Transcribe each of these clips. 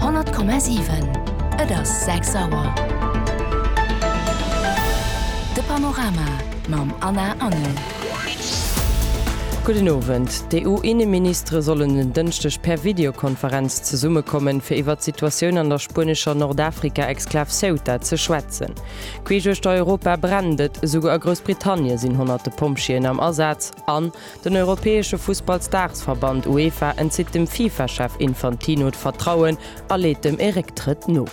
100,7 Et ass 6 Auer. De Panorama mam Anna Engel. Gudden Owend. D'EU-Inneministere sollen en Dënschdeg per Videokonferenz zesummekommen, fir iwwert d'Situatioun an der spuenescher Nordafrika-Exklav Ceuta ze schwätzen. Queesch uechter Europa brennt et. Esouguer a Groussbritannien sinn honnerte Pompjeeën am Asaz an Den europäesche Fussballsdaagsverband UEFA entzitt dem FIFA-Chef Infantino d'Vertrauen a leet dem e Récktrëtt no.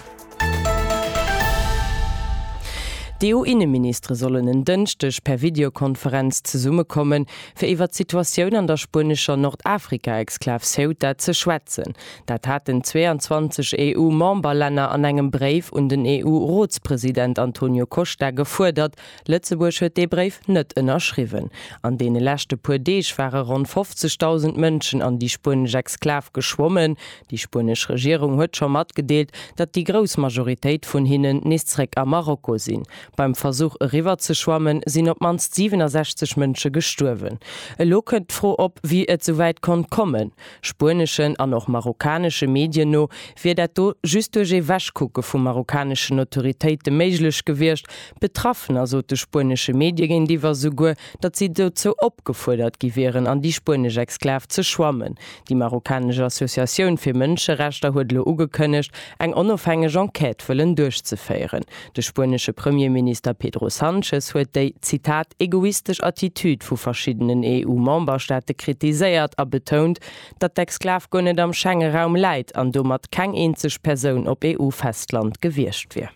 D'EU-Inneministere sollen en Dënschdeg per Videokonferenz zesummekommen, fir iwwer d'Situatioun an der spuenescher Nordafrika-Exklav Ceuta ze schwätzen. Dat haten 22 EU-Memberlänner an engem Bréif un den EU-Rotspresident Antonio Costa gefuerdert, Lëtzebuerg huet dee Bréif net ënnerschriwwen. An deene leschte puer Deeg ware ronn 50.000 Mënschen an déi spuenesch Exklav geschwommen. Déi spuenesch Regierung huet scho matgedeelt, datt déi grouss Majoritéit vun hinnen nees zréck a Marokko sinn. Beim Versuch eriwwer ze schwammen, sinn op d'mannst 67 Mënsche gestuerwen. Elo kënnt d'Fro op, wéi et souwäit konnt kommen. Spueneschen an och marokkanesche Medien no wier dat do just duerch ee Wegkucke vu marokkaneschen Autoritéite méiglech gewiescht, Betraffener sot de spuenesche Medie géintiwwer souguer, datt si dozou opgefuerdert gi wieren, an déi spuenesch Exklav ze schwammen. Déi marokkanesch Associatioun fir Mënscherechter huet elo ugekënnegt, eng onofhängeg Enquête wëllen duerchzeféieren. De spuenesche Premierminister Pedro Sanchez huet déi, Zitat, egoistesch Attitüd vu verschiddenen EU-Memberstaate kritiséiert a betount, datt d'Exklav guer net am Schengeraum läit an domat keng eenzeg Persoun op EU-Festland gewiescht wier.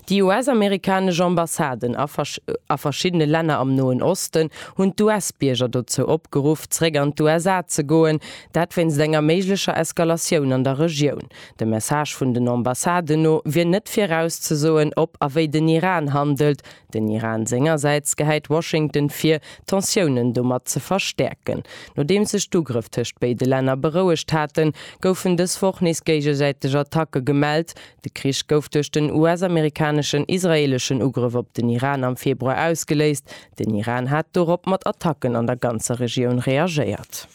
Déi US-amerikanesch Ambassaden a verschiddene Länner am Noen Osten hunn d'US-Bierger dozou opgeruff, zeréck an d'USA ze goen, dat wéinst enger méiglecher Eskalatioun an der Regioun. Dem Message vun den Ambassaden no wier net virauszesoen, ob a wéi den Iran handelt, Den Iran sengersäits gehäit Washington vir, d'Tensiounen domat ze verstäerken. Nodeems sech d'Ugrëff tëscht béide Länner berouegt haten, goufen dës Woch nees géigesäiteg Attacke gemellt. De Krich gouf duerch den US-amerikaneschen, israeeleschen Ugrëff op den Iran am Februar ausgeléist. Den Iran hat dorop mat Attacken an der ganzer Regioun reagéiert.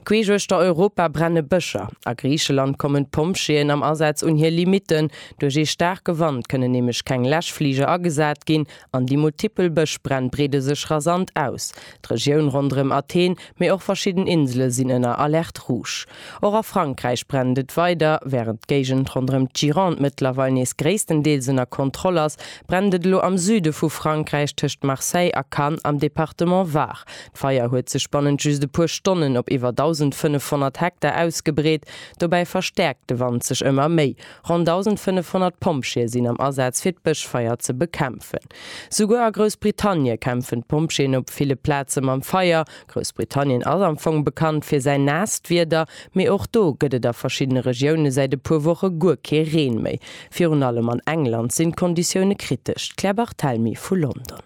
Queesch uechter Europa brenne Bëscher. A Griicheland kommen d'Pompjeeën am Asaz un hir Limitten. Duerch ee staarke Wand kënnen nämlech keng Läschfliger agesat ginn an déi multipel Bëschbränn breede sech rasant aus. D'Regioun ronderëm Athen, mee och verschidden Insele sinn ënner Alerte rouge. Och a Frankräich brennt et weider. Wärend d'Géigend ronderëm d'Gironde mëttlerweil nees gréisstendeels ënner Kontroll ass, brennt et elo am Süde vu Frankräich tëscht Marseille a Cannes am Departement Var. D'Feier huet sech bannent just e puer Stonnen op iwwer 1.500 Hektar ausgebreet. Dobäi verstäerkt de Wand sech ëmmer méi. Ronn 1.500 Pompjeeë sinn am Asaz, fir d'Bëschfeier ze bekämpfen. Souguer a Groussbritannie kämpfen d'Pompjeeën op ville Plaze mam Feier. Groussbritannien ass am Fong bekannt fir säin naasst Wieder, mee och do gëtt et a verschiddene Regioune säit e puer Woche guer kee Reen méi. Virun allem an England sinn d'Konditioune kritesch. D'Claire Barthelmy vu London.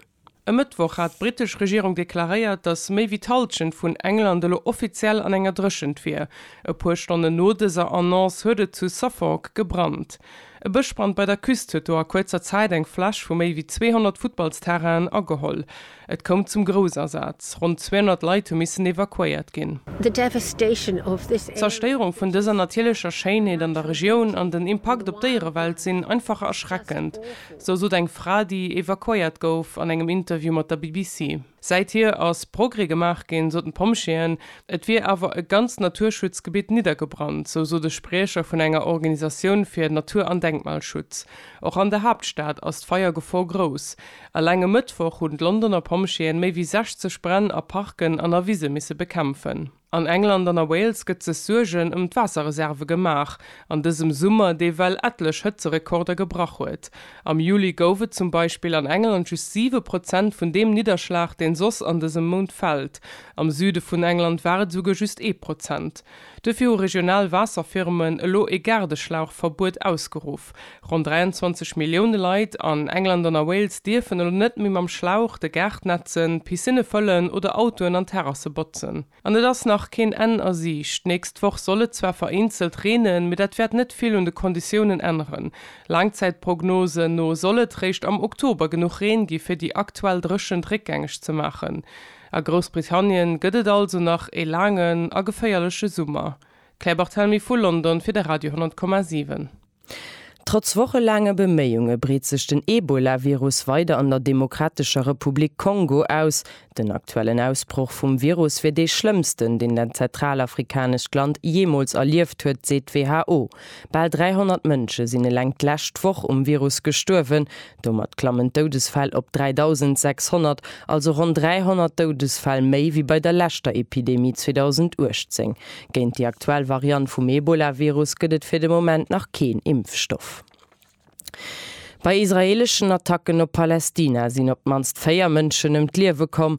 E Mëttwoch hat d'brittesch Regierung deklaréiert, datt méi wéi d'Hallschent vun England elo offiziell an enger Dréchent wier. E puer Stonnen no dëser Annonce huet et zu Suffolk gebrannt. E Bëschbrand bei der Küst huet do a kuerzer Zäit eng Fläch vu méi wéi 200 Futtballsterrainen ageholl. Et koum zum Groussasaz, ronn 200 Leit hu missen evakuéiert ginn. D'Zerstéierung vun dëser natierlecher Schéinheet an der Regioun an den Impakt op d'Déierewelt sinn einfach erschreckend. Sou sot eng Fra, déi evakuéiert gouf an engem Interview mat der BBC. Säit hier ass Progrès gemaach ginn, soten d'Pompjeeën. Et wier awer e ganzt Naturschutzgebitt niddergebrannt, sou sot e Spriecher vun enger Organisatioun fir Natur an Denkmalschutz. Och an der Haaptstad ass d'Feiergefor grouss. Eleng e Mëttwoch hunn d'Londoner Pompjeeën méi wéi 60 Bränn a Parken an a Wise misse bekämpfen. An England an a Wales gëtt sech Suergen ëm d'Waasserreserve gemaach an dësem Summer, dee well etlech Hëtzerekorder gebrach huet. Am Juli gouf et zum Beispill an England just 7 Prozent vun deem Nidderschlag, deen soss an dësem Mount fält. Am Süde vun England war et esouguer just ee Prozent. Duerfir hu regional Waasserfirmen elo ee Gaardeschlauchverbuet ausgeruff. Op. Ronn 23 Millioune Leit an England an a Wales dierfen elo net méi mam Schlauch de Gaart nätzen, Piscinne fëllen oder Autoen an Terrasse botzen. An et ass nach keen Enn a Siicht. D'nächst Woch soll et zwar vereenzelt reenen, mee dat wäert net vill un de Konditiounen änneren. Laangzäitprognosen no soll et réischt am Oktober genuch Reen gi fir déi aktuell Dréchent réckgängeg ze maachen. A Groussbritannien gëtt et also nach e laangen a geféierleche Summer. D'Claire Barthelmy vu London fir de Radio 10,7. Trotz wochelaange Beméiunge breet sech den Ebola-Virus weider an der Demokratescher Republik Kongo aus. Den aktuellen Ausbroch vum Virus wier dee schlëmmsten, deen dat zentralafrikanescht Land jeemools erlieft huet, seet d'WHO. Bal 300 Mënsche sinn eleng d'lescht Woch um Virus gestuerwen, Domat klammen d'Doudesfäll op 3.600, also ronn 300 Doudesfäll méi wéi bei der leschter Epidemie 2018. Géint déi aktuell Variant vum Ebola-Virus gëtt et fir de Moment nach keen Impfstoff. Bei israeeleschen Attacken op Palästina sinn op d'mannst véier Mënschen ëm d'Liewe komm,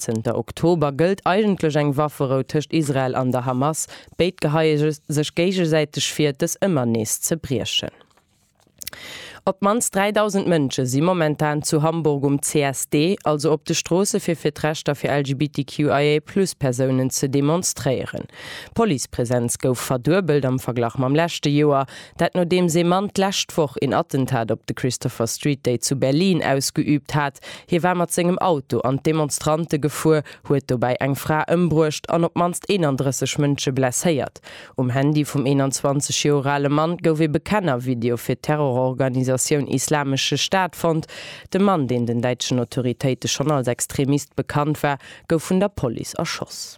Zënter Oktober gëllt eigentlech eng Wafferou tëscht Israel an der Hamas. Béid geheie sech géigesäiteg vir, dës ëmmer nees ze briechen. Op d'mannst 3.000 Mënsche si momentan zu Hamburg um CSD, also op de Stroosse fir fir d'Rechter fir LGBTQIA-Plus-Persounen ze demonstréieren. D'Policepresenz gouf verduebelt am Verglach mam leschte Joer. Dat nodeems ee Mann d'lescht Woch een Attentat op de Christopher Street Day zu Berlin ausgeüübt hat. Hie war mat sengem Auto an d'Demonstrante gefuer, huet dobäi eng Fra ëmbruecht an op d'mannst 31 Mënsche blesséiert. Um Handy vum 21 Joer ale Mann gouf ee Bekennervideo fir d'Terrororganisatioun Islamesche Staat fonnt. De Mann, deen den däitschen Autoritéite schonn als Extremist bekannt war, gouf vun der Police erschoss.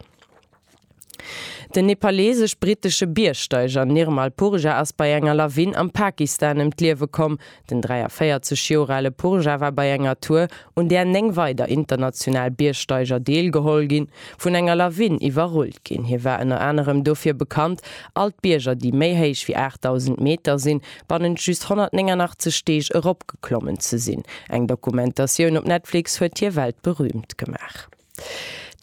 Den nepaleesesch-brittesche Biergsteiger Nirmal Purja ass bei enger Lawin am Pakistan ëm d'Liewe komm. Den 43 Joer ale Purja war bei enger Tour, un där 9 weider international Biergsteiger deelgeholl ginn, vun enger Lawin iwwerrullt ginn. Hie war ënner anerem dofir bekannt, all d'Bierger, déi méi héich wéi 8.000 Meter sinn, bannent just 189 Deeg eropgeklommen ze sinn. Eng Dokumentatioun op Netflix huet hie weltberüümt gemaach.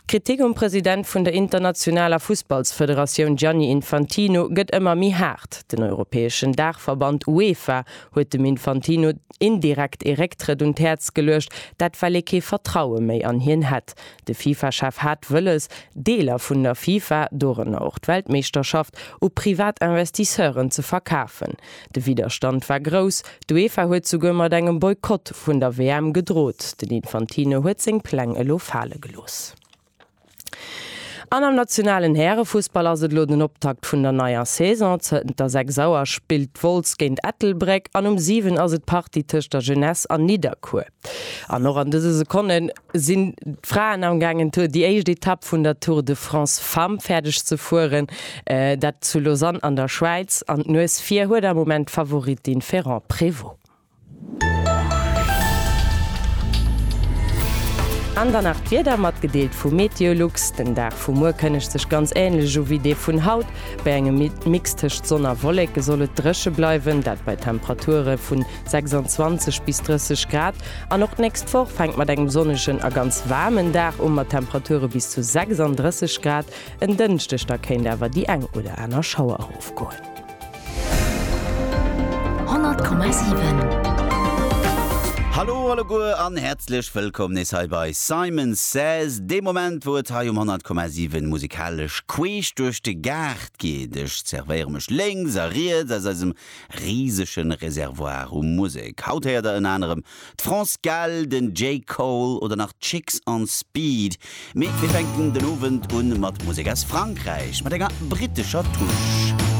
D'Kritik um President vun der internationaler Fussballsfederatioun Gianni Infantino gëtt ëmmer méi haart. Den europäeschen Daachverband UEFA huet dem Infantino indirekt ee Récktrëtt un d'Häerz geluecht, dat well ee kee Vertraue méi an hien hätt. De FIFA-Chef hat wëlles, Deeler vun der FIFA, dorënner och d'Weltmeeschterschaft, u privat Investisseuren ze verkafen. De Widderstand war grouss, d'UEFA huet souguer mat engem Boykott vun der WM gedrot. Den Infantino huet seng Pläng elo fale gelooss. An am nationalen Härefussball ass et elo den Optakt vun der neier Saison. Zënter 6 Auer spillt Wolz géint Ettelbréck an um 7 ass et d'Partie tëscht der Jeunesse an Nidderkuer. An och an dëse Sekonne sinn d'Fraen am gaangen Tour déi éischt Etapp vun der Tour de France Femmes fäerdeg ze fueren, dat zu Lausanne an der Schwäiz. An d'Nues vir huet am Moment d'Favoritin Ferrand-Prévot. An dann nach d'Wieder, matgedeelt vu MeteoLux. Den Dag vu muer kënnegt sech ganz änlech u wéi dee vun haut. Bei engem Mix tëscht Sonn a Wolleke soll et dréche bleiwen, dat bei Temperature vun. 26 bis 30 Grad an och d'nächst Woch fänkt mat engem sonnegen a ganz waarmen Dag u mat Temperature bis zu 36 Grad. En Dënschdeg da kéint awer déi eng oder aner Schauer erofgoen. 100,7. Hallo alleguer an häerzlech wëllkomm nees hei bei Simon Says, dee Moment wou et hei um 100,7 musikalesch queesch duerch de Gaart geet. Ech zervéiere mech lénks a riets aus eisem risegen Reservoir u Musek. Haut héiert der ënner anerem d'France Gall, den Jay Cole oder nach d'Chicks on Speed. Mee mir fänken den Owend un mat Musek aus Frankräich, mat enger brittescher Touche.